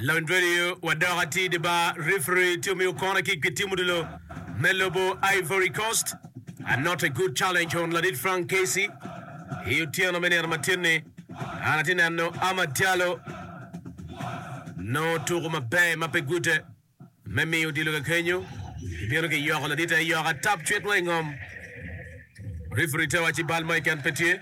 Lawiny Vedio, Wadok atir di bar, referee tye omiyo kona kick pi tim odilo me lobo Ivory Coast. A not a good challenge on ladit Frank Casey. I otyeno me nino ma tin-ni, an atye neno Amad Diallo nongo tuku maber ma pe gute. Me miyo odilo kakenyo, bino ki yoko ladit aye yoko atap cwit wa i ngom. Referee te waci bal mo i ken pe tye.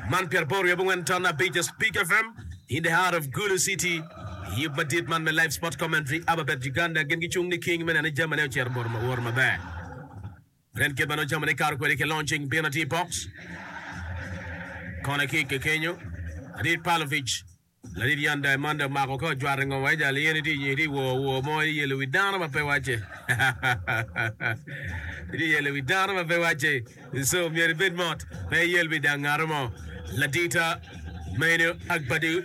Man pyera boro ryo abongwen ton abic a Speak FM in the heart of Gulu City. I yub madit man me Live Sport Commentary aba bed Uganda gin gicung ni king me neno ni jami ne ocito boro woro maber. Nen kit ma nongo jami ne kato kwede ki launching bino atir i box. Kona kick kakenyo. Adit Pavlovic. Ladit Jan Diamanda omako ka ojwato i ngom wai jal i eni tye nyo itye wor wor mo itye yelo wi dano ma pe wacce itye yelo wi dano ma pe wacce so myero ibed mot pe iyel wi dang ngato mo ladita ma eni Agbadi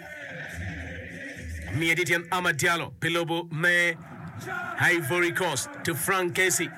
omiye tye tyen Amad Diallo pi lobo me Ivory Coast to Frank Casey